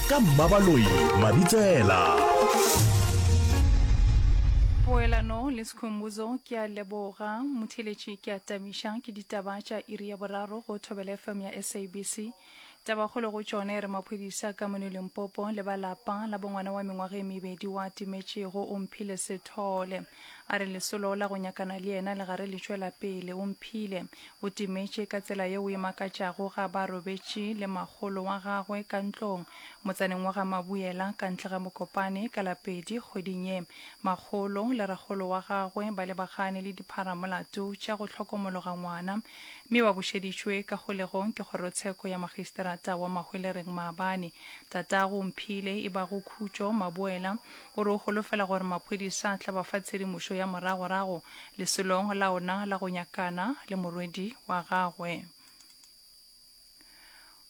ka mmabaloi mabitsela poelano le sekhombuzo ke a leboga motheletši ke a tabiša ke ditaba tša iri ya boraro go thobela fm ya sabc tabakgolo go tšone re maphodisa ka mono limpopo le ba lapa la bongwana wa mengwaga e mebedi wa timetšego o mphile sethole a re lesolo la go nyakana le yena le gare le tšwela pele o mphile O timetše ka tsela yeo e makatšago ga ba robetše le makgolo wa gagwe ka ntlong, motsaneng wa ga Mabuela, ka ntle ga Mokopane, ka la pedi kgweding ye. Makgolo le rakgolo wa gagwe ba lebagane le dipharamolato tša go hlokomologa ngwana, mme ba bušeditšwe ka kgolegong ke kgorotsheko ya magisterata wa Mahwelereng maabane. Tatago Mphile, e bago Khutšo Mabuela, O re o holofela gore maphodisa a tla ba fa tshedimošo ya moragorago lesolong la ona la go nyakana le morwedi wa gagwe.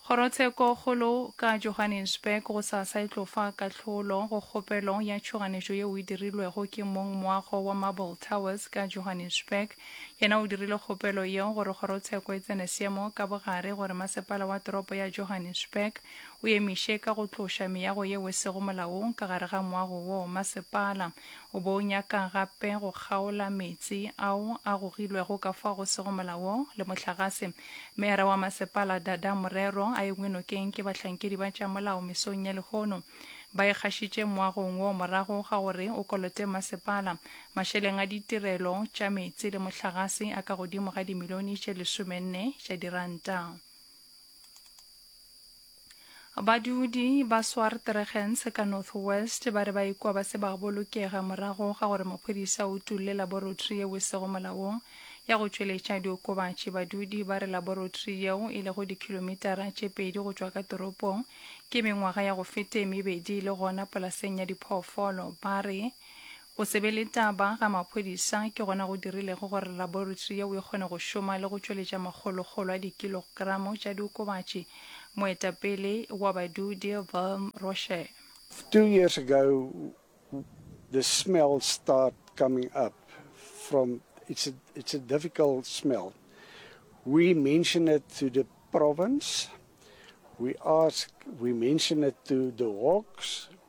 Kgorotshekokgolo ka Johannesburg gosasa e tlo fa kahlolo go kgopelo ya tšhoganetšo yeo e dirilwego ke mong moago wa Marble Towers ka Johannesburg. Yena o dirile kgopelo yeo gore kgorotsheko e tsene seemo ka bogare gore masepala wa toropo ya Johannesburg o emiše ka go tloša meago yeo e sego molaong ka gare ga moago wo masepala o bo o nyaka gape go kgaola meetse ao a gogilwego ka fao go sego molaong le mohlagase. Meyara wa masepala Dada Morero a engwe nokeng ke bahlankedi ba tša molao mesong ya lehono ba ikgašitše moagong wo morago ga gore o kolote masepala mašeleng a ditirelo tša meetse le mohlagase a ka godimo ga dimilione tše lesomenne tša diranta. Badudi ba Swartregens ka Northwest ba re ba ikwa ba se ba bolokega morago ga gore maphodisa o utulle laborotri yeo e sego molaong ya go tšweletša diokobatši. Badudi ba re laborotri yeo e lego dikhilomitara tše pedi go tšwa ka toropong ke mengwaga ya go fete mebedi e le gona polaseng ya diphoofolo. Ba re Go se be le taba ga maphodisa ke gona go dirilego gore laboretri yeo e kgone go šoma le go tšweletša makgolokgolo a dikilogramo tša diokobatši, moetapele wa badudi Wilm Roshe. Two years ago the smell start coming up from it's a it's a difficult smell we mention it to the province we ask we mention it to the hawks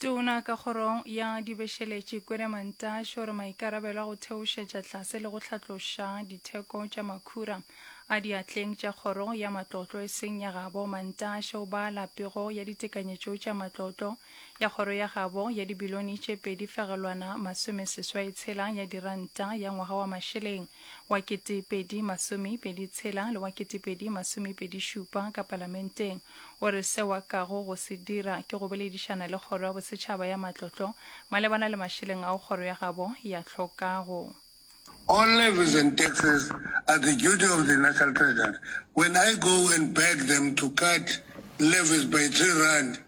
Tona ka kgorong ya dibešeletše Kwere Mantashe o re maikarabelo a go theošetša tlase le go hlatloša ditheko tša makhura a diatleng tša kgoro ya matlotlo e seng ya gabo. Mantashe o bala pego ya ditekanyetšo tša matlotlo ya kgoro ya gabo ya dibilone tše pedi fegelwana masome seswai tshela ya diranta ya ngwaga wa mašeleng wa 2026 le wa 2027 ka Palamenteng, o re seo a kago go se dira ke go boledišana le Kgoro ya Bosetšhaba ya Matlotlo malebana le mašeleng ao kgoro ya gabo ya hlokago. All levies and taxes are the duty of the National Treasury. When I go and beg them to cut levies by three rand,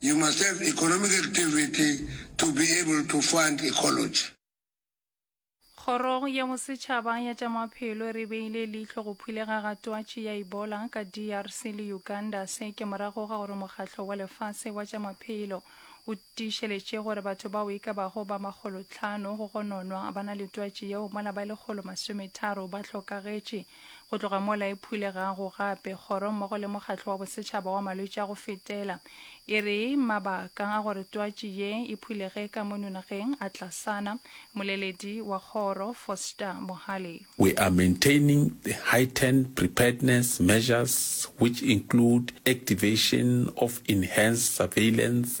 You must have economic activity to be able to fund ecology. Kgorong ya Bosetšhaba ya tša Maphelo re beile leihlo go phulega ga twatši ya Ebola ka DRC le Uganda. Se ke morago ga gore Mokgatlo wa Lefase wa tša Maphelo o tiišeletše gore batho bao e ka bago ba makgolotlhano go gononwa ba na le twatši yeo mola ba lekgolo masometharo ba hlokagetše. Go tloga mola e phulegago gape, Kgoro mmogo le Mokgatlo wa Bosetšhaba wa Malwetši a go Fetela e re mabaka a gore twatši ye e phulege ka mono nageng a tlasana. Moleledi wa kgoro, Foster Mohale. We are maintaining the heightened preparedness measures which include activation of enhanced surveillance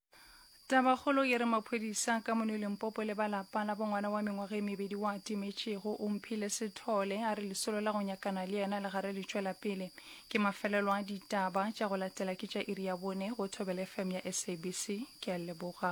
Tabakgolo ye re maphodisa ka mono Limpopo le ba lapa la bongwana wa mengwaga e mebedi wa timetšego o mphile sethole a re lesolo la go nyakana le yena le gare le tšwela pele. Ke mafelelo a ditaba tša go latela ke tša iri ya bone go Thobela FM ya SABC. Ke a leboga.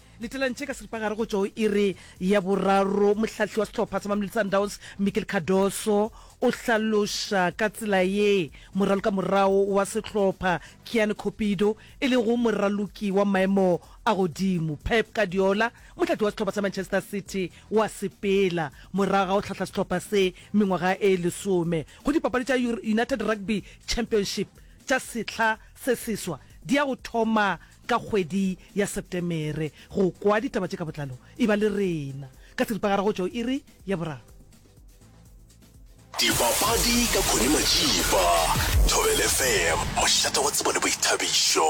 Letelantšhe ka seripagare go tšwa go iri ya boraro, mohlahli wa sehlopha sa Mamelodi Sundowns Mikel Cardoso o hlaloša ka tsela ye moraloki ka morago wa sehlopha Kiani Cupido e lego moraloki wa maemo a godimo. Pep Guardiola, mohlahli wa sehlopha sa Manchester City wa sepela morago ga go hlahla sehlopha se mengwaga e lesome go dipapadi tša United Rugby Championship tša sehla se seswa di ya go thoma ka kgwedi ya Setemere go kwa ditaba tše ka botlalo. E ba le rena ka seripagare go tšwa go iri ya boraro. Dipapadi ka Connie Matšipa, Thobela FM, mošate wa tsebo le boithabišo.